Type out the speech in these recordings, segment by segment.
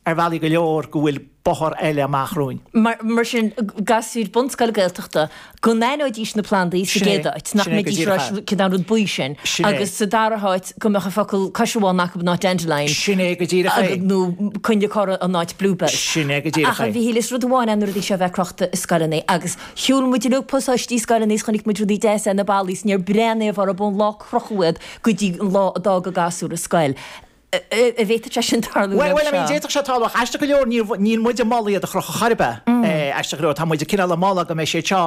ar bhealaí go leor go bhfuil bóthar eile amach romhainn. Mar sin, gasúir bunscoile Gaeltachta, go n-aithneoidís na plandaí sa gcéad áit, nach mbeidís ag rá cén an rud buí sin, agus sa dara háit go mbeadh an focal caisearbhán acu in áit dandelion, nó coinnle corra in áit bluebell. Ach a Mhichíl, is rud amháin é na rudaí seo a bheith crochta i scoileanna, agus shiúil muid uilig pasáistí scoileanna is chonaic muid rudaí deasa ar na ballaí is níor bhreathnaigh aon duine orthu ón lá a crochadh iad go dtí an lá a d'fhág an gasúr an scoil. an bhféadfadh sé sin tarlú roimh Bhuel, I mean, seo? d'fhéadfadh sé tarlú ach aisteach go leor níor, níl muid ag moladh iad a chrochadh chor ar bith, eh, aisteach go leor, tá muid cineál ag moladh go mbeidh siad seo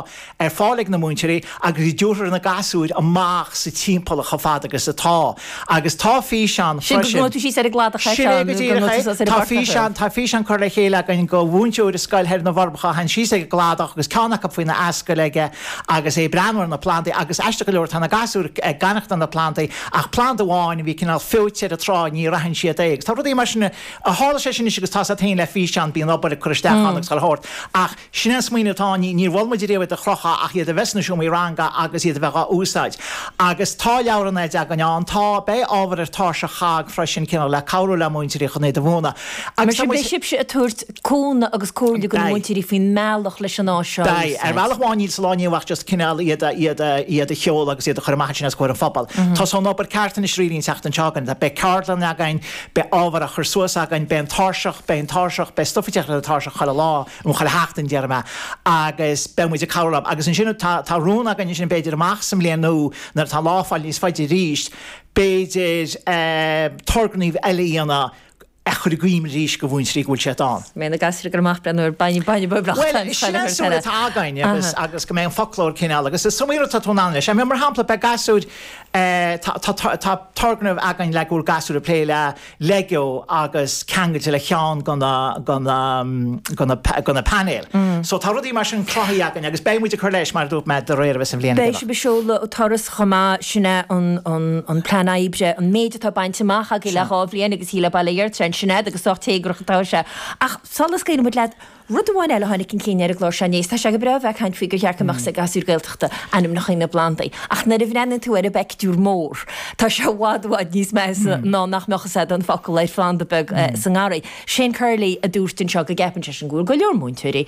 ar fáil ag na múinteoirí agus go dtabharfar na gasúir amach sa timpeallacht chomh fada agus atá agus tá físeán Sin go freisin, gabháil síos ar an gcladach é sin seo é go nó go díreach é, gabháil suas ar an tá bportach. físeán, tá físeán curtha le chéile againn go mhúinteoir i scoil thoir sna Forbacha a théann síos ag an gcladach agus ceann acu faoina ascaill aige agus é ag breathnú ar na plandaí agus aisteach go leor tá na gasúir ag aithneachtáil na bplandaí Ach planda amháin a bhí cineál feoite ar an trá, níor aithin siad é. Agus tá rudaí mar sin, tharla sé sin anois agus tá sé taobh le físeán, b'in an obair a cuireadh isteach ann agus a thabhairt. Ach sin é an smaoineamh atá ann, níor mhol muid riamh iad a chrochadh ach iad a bheith sna seomraí ranga agus iad a bheith á úsáid. Agus tá leabhrán eile againn ann, tá, beidh ábhar ar Tairseach COGG freisin, cineál le cabhrú le múinteoirí chun iad a mhúineadh. Agus tá muid. cúnamh agus comhairle do na Beidh. múinteoirí faoin mbealach leis an áis seo a Beidh. Ar úsáid. bhealach amháin níl sa lá inniu ach just cineál iad a, iad a, iad a sheoladh agus iad a chur amach ansin os comhair an phobail. Tosóidh an obair ceart anois really an tseachtain seo chugainn, beidh ceardlann againn, beidh ábhar á chur suas againn, beidh an tairseach, beidh an tairseach, beidh stuff ag teacht le an tairseach chuile lá, nó chuile sheachtain déarfaidh mé, agus beidh muid ag cabhrú leo. Agus ansin tá, tá rún againn ansin b'fhéidir amach sa mbliain nua nuair atá an lá ag fáil níos faide arís, b'fhéidir eh turgnaimh eile a dhéanamh, ach a chur i gcuimhne arís go mhúinteoirí go bhfuil siad ann. Mé na gasúir a chur amach ag breathnú ar bainne bainne bó bleacht Bhuel, is sin an saol atá againn agus, agus go mbeidh an foclóir cineál, agus is iomaí rud atá tú in ann leis. I mean, mar shampla, beidh gasúir eh, tá, tá, tá, tá turgnamh againn le go bhfuil gasúir ag plé le Lego agus ceangailte le cheann go na, go na, go na, go na painéil. So tá rudaí mar sin cruthaithe againn agus beidh muid ag cur leis, mar a dúirt mé, de réir mar a bheas an bhliain ag Beidh dul. sibh ag seoladh turas. chomh maith, sin é an plean oibre, an méid atá bainte amach againn le dhá bhliain agus aoi le bail ó Dhia ort ann, sin é, agus sách téagarach atá sé. Ach sula scaoileann muid leat, rud amháin eile a tháinig chun cinn ar an gclár seo inné, is tá sé go breá a bheith ag caint faoi gur cheart go mbeadh a fhios ag gasúr Gaeltachta ainmneacha na bplandaí, ach nuair a bhreathnaíonn tú ar an bpeictiúr mór, tá sé i bhfad i bhfad níos measa ná nach mbeadh a fhios acu an focal ar phlanda beag sa ngarraí. Shane Curley a dúirt anseo go gceapann seisean go bhfuil go leor múinteoirí,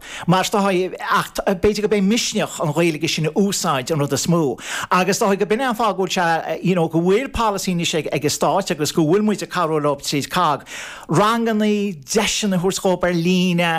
Mar is dóichí, ach b'fhéidir gurb é misneach an Ghaeilge sin a úsáid an rud is mó. Agus is dóichí go b'in é an fáth go bhfuil sé, you know, go bhfuil polasaí anois ag an stát agus go bhfuil muid ag cabhrú leob tríd COGG, rangannaí, deiseanna a thabhairt dhób ar líne,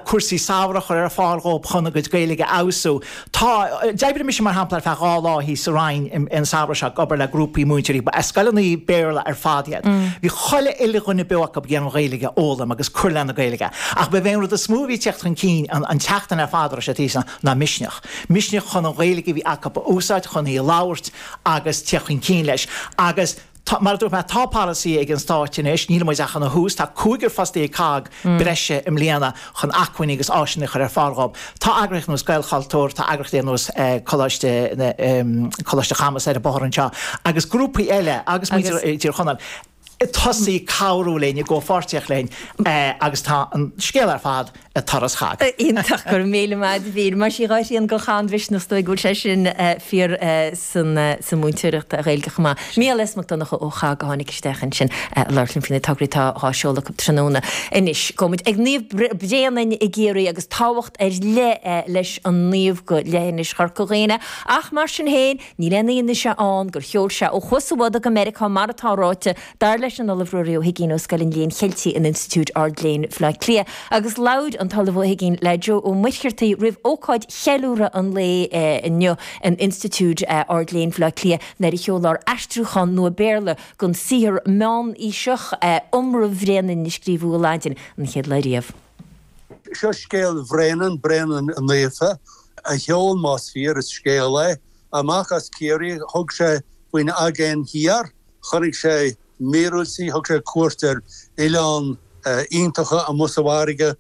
cúrsaí samhraidh a chur ar fáil dhób chun a gcuid Gaeilge a fheabhsú. Tá. D'oibrigh mise, mar shampla, ar feadh dhá lá thíos sa Rinn an samhradh seo ag obair le grúpaí múinteoirí. Ba scoileanna Béarla ar fad iad. Bhí chuile uile dhuine beo acu ag iarraidh an Ghaeilge a fhoghlaim agus cur lena Gaeilge. Ach ba é an rud is mó a bhí ag teacht chun cinn an t-achar ar fad a raibh siad thíos ann ná misneach. Misneach chun an Ghaeilge a bhí acu a úsáid, chun í a labhairt agus teacht chun cinn leis. Agus. Tá, mar a dúirt mé, tá polasaí ag an Stát anois, níl muid ach ina thús, tá cúigear fostaí ag COGG breise i mbliana chun acmhainní agus áiseanna a chur ar fáil dhób. Tá eagraíocht ar nós Gaelchultúr, tá eagraíochtaí ar nós Coláiste na, Coláiste Chamuis ar an bóthar anseo agus grúpaí eile agus muintir Thír Chonaill ag tosaí ag cabhrú linn, i gcomhpháirtíocht linn agus tá an scéal ar fad, a turas thart. Iontach, go raibh míle maith a'd a Mhíchíl. Mar sin, dhá thrian den chath an misneach, is dóigh go bhfuil sé sin fíor sa mhúinteoireacht Ghaeilge chomh maith. Mícheál S. Mac Donnacha ó COGG a tháinig isteach ansin a labhairt linn faoi na tograí atá dhá seoladh acu tráthnóna. Anois, gabhfaidh muid ag Naomh Bréanainn i gCiarraí agus tábhacht ar leith leis an naomh go leithinis Chorca Dhuibhne, ach mar sin féin, níl aon fhianaise ann gur sheol sé ó Chuas an Bhodaigh go Meiriceá mar atá ráite Dar leis an Ollamh Ruairí Ó hUiginn ó Scoil an Léinn Cheiltigh in Institiúid Ard-Léinn Bhleá Cliath, agus labhair an tOllamh Ó hUiginn le Joe Ó Muircheartaigh roimh ócáid cheiliúradh an lae inniu in Institiúid Ard-Léinn Bhleá Cliath, nuair a seolfar aistriúchán nua Béarla den saothar meánaoiseach Iomramh Bhréanainn a scríobhadh i Laidin an chéad lá riamh. Seo scéal Bhréanainn, Bréanainn naofa, a sheol, más fíor, an scéal é, amach as Ciarraí. Thug sé faoin Aigéan Thiar. Chonaic sé míorúiltí, thug sé cuairt ar oileáin iontacha amuigh sa bhfarraige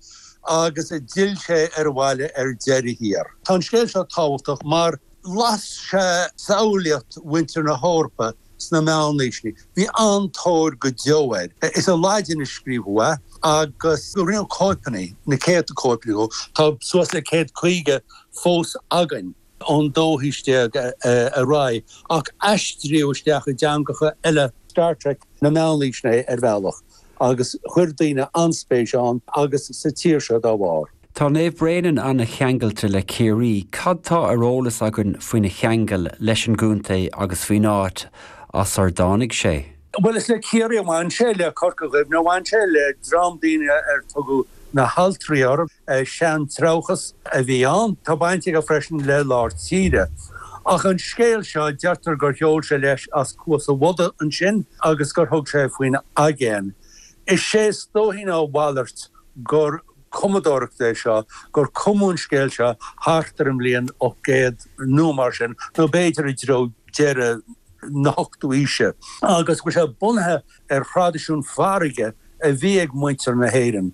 agus d'fhill sé abhaile ar deireadh thiar. Tá an scéal seo tábhachtach mar las sé samhlaíocht mhuintir na hEorpa sna meánaoiseanna. Bhí an-tóir go deo air. Is i Laidin a scríobhadh é agus rinneadh cóipeanna, na céadta cóip dho. Tá suas le céad caoga fós againn. ón dóú haois déag ar aghaidh, ach aistríodh é isteach i dteangacha eile. Star Trek na meánaoiseanna é ar bhealach agus chuir daoine an-spéis ann agus sa tír seo dá bharr. Tá Naomh Bréanainn an-cheangailte le Ciarraí. Cad tá ar eolas againn faoina cheangal leis an gcontae agus faoin áit as ar dtáinig sé? Bhuel, is le Ciarraí a bhain sé, le Corca Dhuibhne a bhain sé, le dream daoine ar tugadh na hAltraí orthu, seantreabhchas a bhí ann. Tá baint aige freisin le lár tíre. Ach an scéal seo, deirtear gur sheol sé leis as Cuas a' Bhodaigh ansin agus gur thug sé faoin aigéan. Is é is dóichí ná a mhalairt gur cumadóireacht é seo, gur cumadh an scéal seo thart ar an mbliain 800 nó mar sin, nó b'fhéidir i dtreo deireadh na. na hochtú aoise, agus go bhfuil sé bunaithe ar thraidisiún farraige a bhí ag muintir na hÉireann,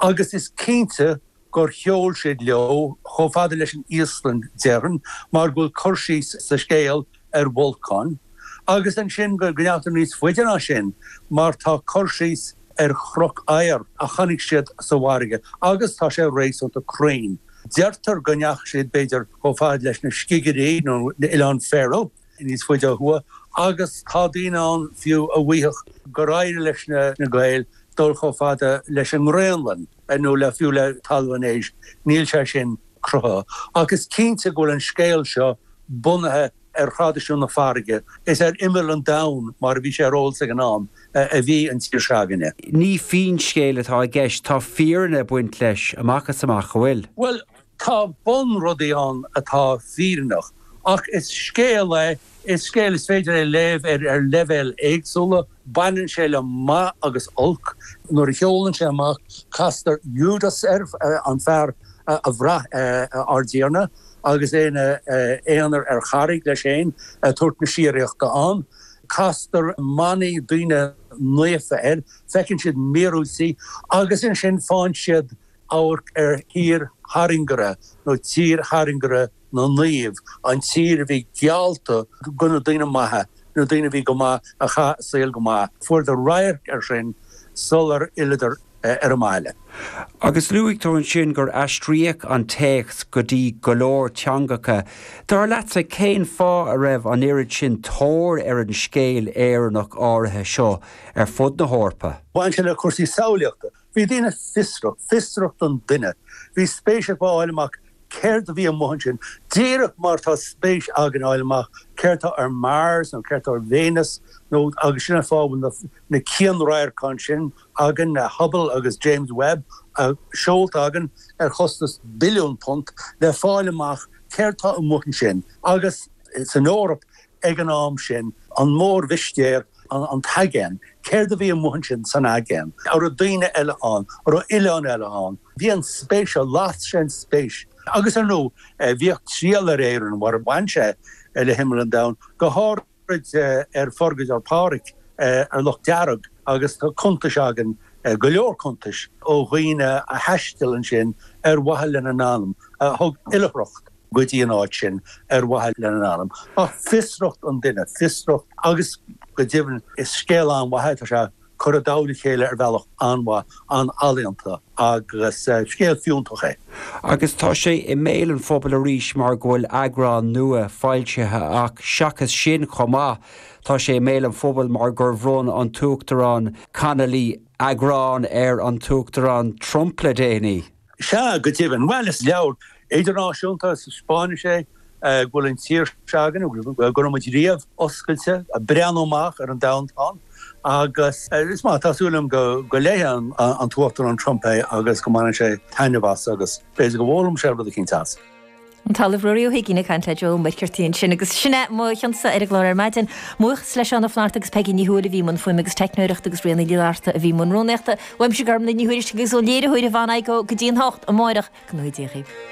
agus is cinnte gur sheol siad leo chomh fada leis an Íoslainn, déarfainn, mar go bhfuil cur síos sa scéal ar bholcáin, agus ansin go ndeachaigh níos faide ná sin, mar tá cur síos ar chnoc oighir a chonaic siad sa bhfarraige, agus tá sé réasúnta cruinn. Deirtear go ndeachaigh siad b'fhéidir chomh fada leis na Scigirí nó Oileáin Faroe. níos faide ó thuaidh agus tá daoine ann fiú a mhaífeadh gur éirigh leis na Gaeil dul chomh fada leis an nGraonlainn nó fiú le Talamh an Éisc. Níl sé sin cruthaithe ach is cinnte go bhfuil an scéal seo bunaithe ar thraidisiún na farraige. Is ar imeall an domhain, mar a bhí sé ar eolas ag an am, a bhí an tír s'againne. Ní finscéal atá i gceist, tá fírinne ag baint leis amach is amach, an bhfuil? Bhuel, Tá bun rudaí ann atá fírinneach, ach is scéal é, is scéal is féidir é léamh ar leibhéil éagsúla, baineann sé le maith agus olc, nuair a sheolann sé amach castar Iúdas air, an fear a bhraith ár dTiarna agus é ina aonar ar charraig leis féin ag tabhairt na síoraíochta ann, castar manaigh, daoine naofa, air, feiceann siad míorúiltí agus ansin faigheann siad. amharc ar thír thairngire nó tír thairngire na naomh, an tír a bhí geallta do na daoine maithe, na daoine a bhí go maith, a chaith a saol go maith. Fuaireadar radharc air sin sular fhilleadar ar an mbaile. Agus luaigh tú ansin gur aistríodh an téacs go dtí go leor teangacha. Dar leatsa, cén fáth a raibh an oiread sin tóir ar an scéal Éireannach áirithe seo ar fud na hEorpa? Bhain sé le cúrsaí samhlaíochta. Bhí daoine fiosrach, fiosracht an duine, bhí spéis acu a fháil amach céard a bhí amuigh ansin, díreach mar tá spéis againn a fháil amach céard tá ar Mars nó céard tá ar Véineas nó. agus sin an fáth a bhfuil na cianradharcáin sin againn, Hubble agus James Webb, seolta againn ar chostas billiún punt, le fáil amach céard tá amuigh ansin. Agus san Eoraip, ag an am sin, an mórmhistéir, an t-aigéan, céard a bhí amuigh ansin san aigéan, a' raibh daoine eile ann, a' raibh oileáin eile ann, bhí an spéis, las sé an spéis. Agus ar ndú, bhíodh triall ar Éirinn, mar bhain sé le himeall an domhain, go háithrid ar Phurgadóir Pháraic, ar Loch Dearg, agus tá cuntais againn, go leor cuntais, ó dhaoine a thaistil ansin ar mhaithe lena n-anam, a thug oilithreacht. go dtí an áit sin ar mhaithe lena n-anam. Tá fiosracht an duine, fiosracht agus, go deimhin, is scéal an-mhaith é. Tá sé curtha i dtoll a chéile ar bhealach an-mhaith, an-ealaíonta agus scéal fiúntach é. Agus tá sé i mbéal an phobail arís mar go bhfuil eagrán nua foilsithe ach, seachas sin chomh maith, tá sé i mbéal an phobail mar gur bhronn an tUachtarán Connolly eagrán ar an tUachtarán Trump le déanaí. Sea, go deimhin. Bhuel, is leabhar idirnáisiúnta, is taispeánann sé go bhfuil an tír s'againne, go raibh muid riamh, oscailte, ag breathnú amach ar an domhan. Tá, agus, is maith, tá súil agam go léifidh an tUachtarán Trump é agus go mbainfidh sé taitneamh as agus b'fhéidir go bhfoghlaimeoidh sé rud eicínt as. An tOllamh Ruairí Ó hUigínn ag caint le Joe Muircheartaigh ansin. Agus sin é mo chionsa ar an gclár ar maidin. Buíochas le Seán Ó Flatharta agus Peigí Ní Thuathail a bhí i mbun fuaime agus teicneoireachta agus Ríona Ní Fhlatharta a bhí i mbun rúnaíochta. Uaimse Gormfhlaith Ní Thuairisg agus ón léiritheoir a bhain aghaidh dhó go dtí an hocht amárach. Go n-uaideochaidh.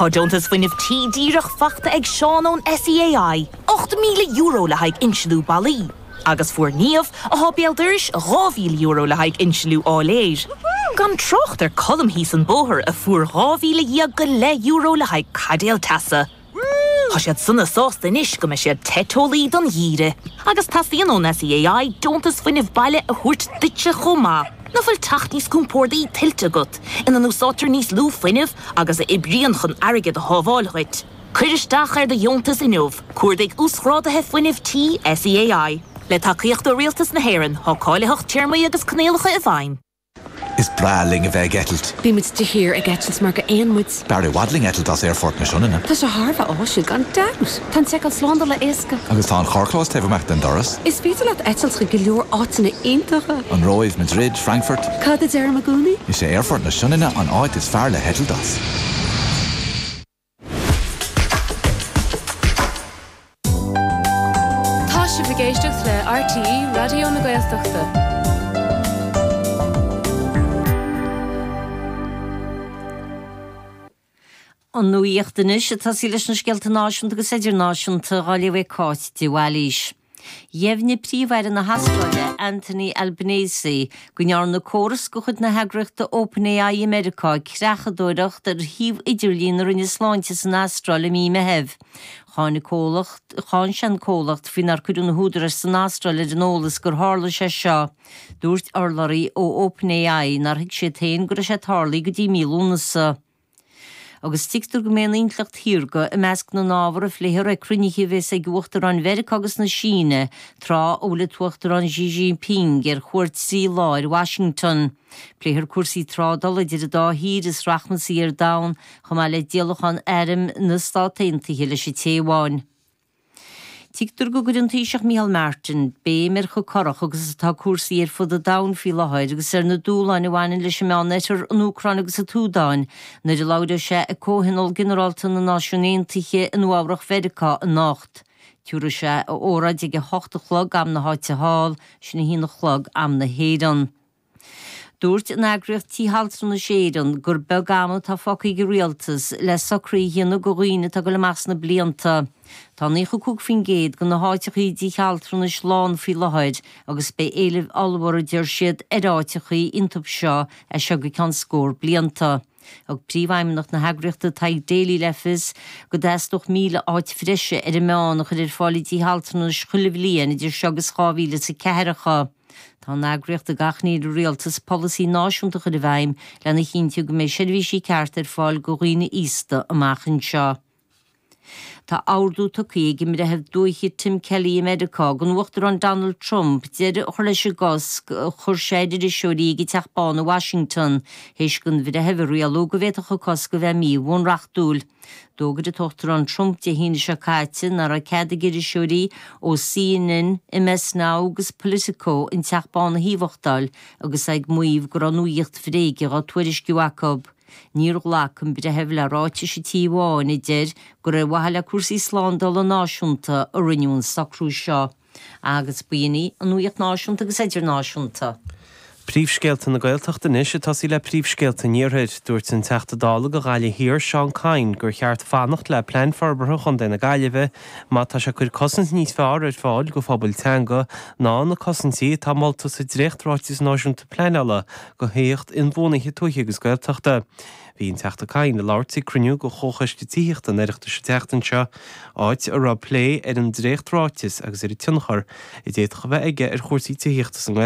Tá deontas Fuinnimh Tí díreach faighte ag Seán ón SEAI, €8,000 le haghaidh insealú balla, agus fuair Niamh, athá béal dorais, €2,000 le haghaidh insliú áiléir, gan trácht ar Colm thíos an bóthar a fuair dhá mhíle dhéag go leith euro le haghaidh caidéal teasa. Tá siad sona sásta anois go mbeidh siad te teolaí don gheimhreadh. Agus teastaíonn ón SEAI deontas Fuinnimh Baile a thabhairt duitse chomh maith, nach bhfuil teach níos compordaí tuillte agat, ina n-úsáidtear níos lú fuinnimh, agus a oibríonn chun airgead a shábháil dhuit. Cuir isteach ar do dheontas inniu, cuardaigh Uasghráduithe Fuinnimh Tí SEAI. Le tacaíocht ó Rialtas na hÉireann, tá cáilitheacht téarmaí agus coinníollacha i bhfeidhm. Is breá linn a bheith ag eitilt. Bíonn muid de shíor ag eitilt mar gur éin muid. B'fhearr i bhfad linn eitilt as Aerfort na Sionainne. Tá sé thar a bheith áisiúil gan dabht! Tá an seiceáil slándála éasca. Agus tá an carrchlós taobh amach den doras. Is féidir leat eitilt chuig go leor áiteanna iontacha. An Róimh, Madrid, Frankfurt. Cad a deirim i gcónaí? Is é Aerfort na Sionainne an áit is fearr le heitilt as. Tá sibh ag éisteacht le RTÉ Raidió na Gaeltachta. An nuacht anois ag tosaí leis na scéalta náisiúnta agus idirnáisiúnta, á léamh ag Cáit de Bhailís. Dheimhnigh Príomh-Aire na hAstráile, Anthony Albanese, go ndearna córas de chuid na heagraíochta OpenAI i Meiriceá creachadóireacht ar shuíomh idirlín na Roinne Sláinte san Astráil i mí Meithimh. Cháin an comhlacht, cháin sé an comhlacht faoi nár cuireadh na húdaráis san Astráil ar an eolas gur tharla sé seo. Dúirt urlabhraí ó OpenAI nár thuig siad féin go raibh sé ag tarlú go dtí mí Lúnasa. Agus tuigtear go mbeidh an intleacht shaorga i measc na n-ábhar a phléifear ag cruinnithe a bheas ag Uachtaráin Mheiriceá agus na Síne tráth a bhfuil an tUachtarán Xi Jinping ar chuairt trí lá ar Washington. Pléifear cúrsaí trádála idir an dá thír is rachmasaí ar domhan, chomh maith le díolachán airm na Stát Aontaithe leis an Téaváin. Tuigtear go gcuirfidh an Taoiseach Micheál Martin béim ar chomh corrach agus atá cúrsaí ar fud an domhain faoi láthair agus ar na dúshláin a bhaineann leis an Meánoirthear, an Úcráin agus an tSúdáin, nuair a labhróidh sé ag Comhthionól Ginearálta na Náisiún Aontaithe i Nua-Eabhrach Mheiriceá anocht. Tabharfaidh sé a óráid ag a hocht a chlog, am na háite thall, sin a haon a chlog, am na hÉireann. Dúirt an eagraíocht Tithe Altranais Éireann gur beag am atá fágtha ag an Rialtas le socraithe a dhéanamh do dhaoine atá ag dul amach sna blianta. Tá 95% de na háiteacha i dtithe altranais lán faoi láthair agus beidh éileamh ollmhór, a deir siad, ar áiteacha iontub seo as seo go ceann scór blianta. Thug Príomhfheidhmeannach na heagraíochta Tadhg Daly le fios go dteastódh 1,000 áit bhreise ar an meán a chur ar fáil i dtithe altranais chuile bhliain idir seo agus 2000 is a ceathracha. Tá an eagraíocht ag achainí ar an Rialtas polasaí náisiúnta a chur i bhfeidhm lena chinntiú go mbeidh seirbhísí cearta ar fáil go dhaoine aosta amach anseo. Tá ordú tugtha ag an mBreitheamh Dúiche Tim Kelly i Meiriceá don Uachtarán Donald Trump deireadh a chur leis an gcosc a chuir sé ar iriseoirí ag an Teach Bán i Washington, théis don bhreitheamh a rialú go bhféadfadh an cosc a bheith mí-bhunreachtúil. D'fhógair an tUachtarán Trump Dé hAoine seo caite nach raibh cead ag iriseoirí ó CNN, MS Now agus Politico an Teach Bán a thaobhachtáil agus é ag maíomh go raibh nuacht bhréige á tuairisciú acu. Níor ghlac an breitheamh le ráitis an Tí Bháin a deir gur ar mhaithe le cúrsaí slándála náisiúnta a rinneadh an socrú seo. Agus b'in í an nuacht náisiúnta agus idirnáisiúnta. Príomhscéalta na Gaeltachta anois ag tosaí le príomhscéalta an iarthair. Dúirt an Teachta Dála go Ghaillimh Thiar, Seán Kyne, gur cheart fanacht le Plean Forbartha Chontae na Gaillimhe má tá sé ag cuir cosaint níos fearr ar fáil do phobail teanga ná na cosaintí atá molta sa Dréacht-Ráiteas Náisiúnta Pleanála go thithíocht inbhuanaithe tuaithe agus Gaeltachta. Bhí an Teachta Kyne ag labhairt ag cruinniú de Chomhchoiste Tithíochta an Oireachtais an tseachtain seo, áit a raibh plé ar an dréacht-ráiteas agus ar an tionchar a d'fhéadfadh a bheith aige ar chúrsaí tithíochta sa